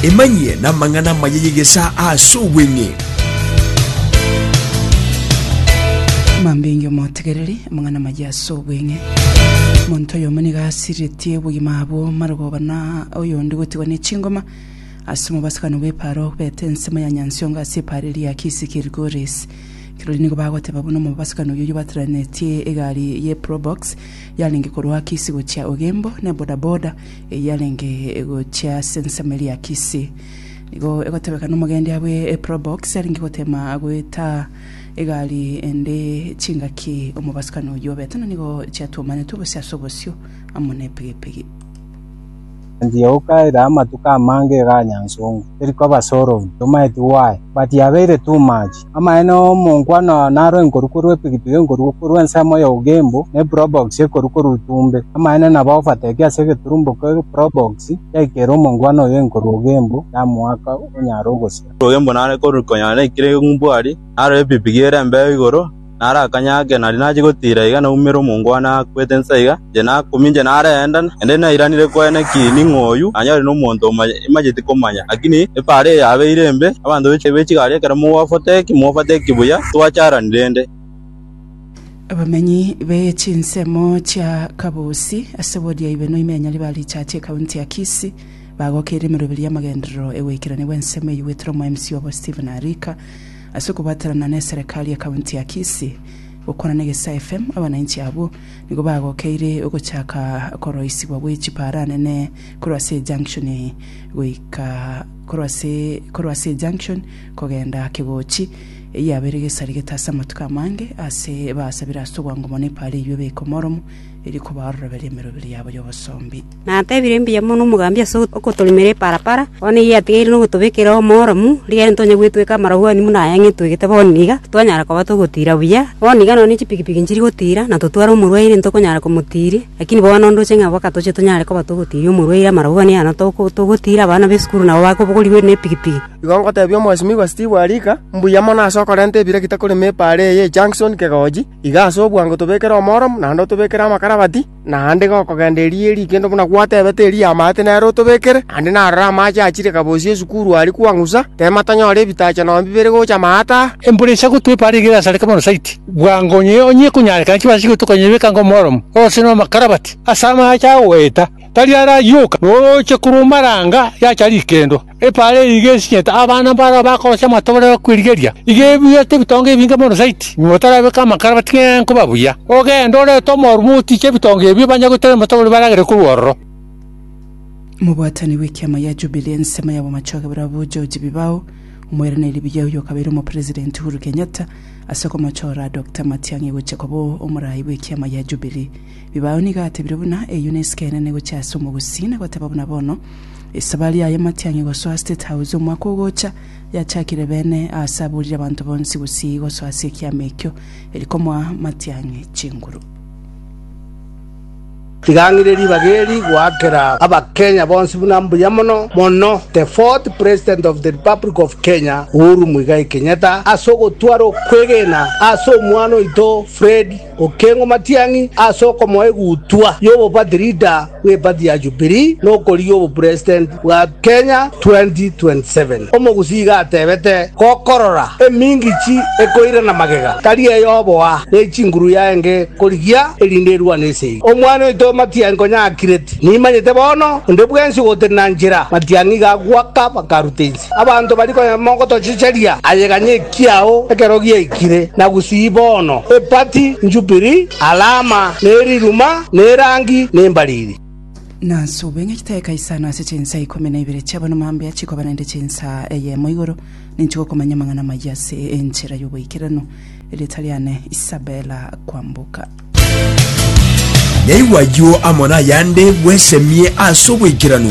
Emanyie namang'ana amaya y'egesaa ase obweng'e. Mambinge omotegereri, amang'ana amaya ase obweng'e. Monto oyomo nigo asiretie obogima abwo marogoba na oyonde gotigwa ne chingoma. Ase omobasano bw'epaaro beta ensemo ya nyansongo ase epaaro eria ya kisi Kilgoris. Kirori nigo bagoteba buna omobasano oyoyio bataranetie egari ye probox yarenge korwa kisi gochia ogembo ne bodaboda eyarenge egochia ase ensemo eria Kisii. Nigo egotebeka nomogendia bwe Probox arenge gotema goeta egari ende chingaki omobasukani oyio obete na nigo chiatuomanetwe gose ase obosio amo nepigipigi. Engiouka ere amatuko amange eganyansongo, eri koba solved, tomaeti why, but yabeire too much. Amaene omonkwana oo naro enkoruko rw'epigipigi enkoruko rw'ensemo y'obogembu, na eproboksi enkoruko rw'itumbe. Amaene nabo obatebie ase egeturumboko eproboksi yaikera omonkwana oyo enkoru ogembu yamoaka onyare ogosira. Ogembu nare ekoru konyara naikire ng'umbwari, naro epigipigi ere embeo igoro, naro akanya ake nari nachie gotiira iga naumere omonkwana akwete insa iga, Inche nakomincha narenta, naende nairanire kwene ki ning'o oyio, onye ore nomonto omoya, imanyeti komanya. Lakini epaaro eye yabeire embe, abanto be chigari ekero mogofateki, mogofateki buya, titwacharani rende. Abamenyi be chinsemo chia Kabusi ase obodiaibe noime ya Nyaribari richache ekaunti ya Kisii bagokeire emeroberio y'amagenderero e goikerania gw'ensemo eyio gwetire omoemsi obo Stephen Arika ase okobwatanana neserekari y'ekaunti ya Kisii. Gokwana negesaFM, abanainchi abwo Nigo bagokeire ogochaka koroisigwa gwe chipaara nene korwa ase eJunction goika korwa ase korwa ase eJunction kogenda Kegochi, eyio abeire gesaregete ase amatuko amange ase basabire ase obwango mono epaara eyio ebeke omoromo, erio kobaoroberie emeroberi yabo y'obosombi. Natebire mbuya mono omogambi ase ogotoremera eparapara, bono eyio yatigaire nogotobekera omoromu, rigari ntonye gwetweka amarogwani buna aya ng'etwegete bono iga, titwanyara koba togotira buya. Bono iga nonya chipikipiki nchiri gotira, na totware omorwaire ntitokonyara komotiria, lakini bono ndoche ng'a mpaka toche tonyare koba togotiria omorwaire amarogwani ayana togotira abana b'esukuru nabo bakobogorigwe nepikipiki. Igo ngotebia Omwesimigwa Steve Arika, mbuya mono ase okorenta ebira gete korema epaara eye y'e Junction Kegoji, iga ase obwango tobekere omoromu, naende otobekere amakarabati, Naende gokogenda erio erio kende buna gwatebete erio amaate nere otobekere. Naende narora amache achire kaboosie esukuru aria kwang'usa, teema tanyore ebitacha nonya bibere gocha amaate aa. Embura ensa gotwepa are igere asare Kebaro Saiti, bwango onye onye ekonyarekana chibaase goetwa konyebeka ngo omoromo, ose nomokarabati, ase amache agoeta, tari arayioka, na oroche korwa omaranga yacha rikendwa. Epaara eye iga esinyete abana mbarao bakorosia amatobore a kwerigeria, iga ebuete ebitonga ebinge mono zaidi, nyuma batarabeke amakarabati ng'a nkoba buya. Ogende, orete omorume otiche ebitonga ebio, banye goteera amatobore baragere korwa ororo. Omobwatani bw'ekiama gia Jubilee ensemo ya bwamachoge barabwo George Bibao, omoiraneria buya oyo okabeire omopresident Uhuru Kenyatta ase okomochora Dokta Matiang'i gochia koba omoraai bw'ekiama gia Jubilee. Bibao nigo atebire buna eyio nesike enene gochia ase omogusi, na goteba buna bono esabari yaye Matiang'i gosoa State House omwaka ogocha yachakire bene aase aburire abanto bonsi gusii gosoa ase ekiama ekio eri komoa Matiang'i chinguru. Tiga ng'ire ribaga eri goakera abakenya bonsi buna mbuya mono mono the fourth president of the republic of Kenya Uhuru Muigai Kenyatta ase ogotwara okwegena ase omwana oito Fred Okeng'u matiang'i ase okomoa egutwa y'obobati leader bw'epati ya Jubilee na okorigia obopresident bwa Kenya 2027. Omogusi iga atebete, Gokorora emingichi ekoirana magega, tari eyoboa, ne chinguru yaenge korigia, erinde erwane ase eyio. Omwana oito matiang'i konya akireti, nimanyete bono, onde bwensi ogotenena nchera matiang'i iga agwaka bakaruta ense. Abanto baria konya mogotochecheria, aye ganya ekiao ekero giaikire, na gusii bono, epati, njubiri, alama, na eriruma, na erangi, na embariri. Na nsubo ng'a chitaika isano ase chinsa ikomi na ibere chiabo na mambia chikoba naende chinsa eyemo igoro, ninche gokomanya amang'ana amayia ase enchera y'oboikeranu. Erieta riane Isabela Kwamboka. Yaigwa ayio amo nayande bwesemie ase oboikeranu.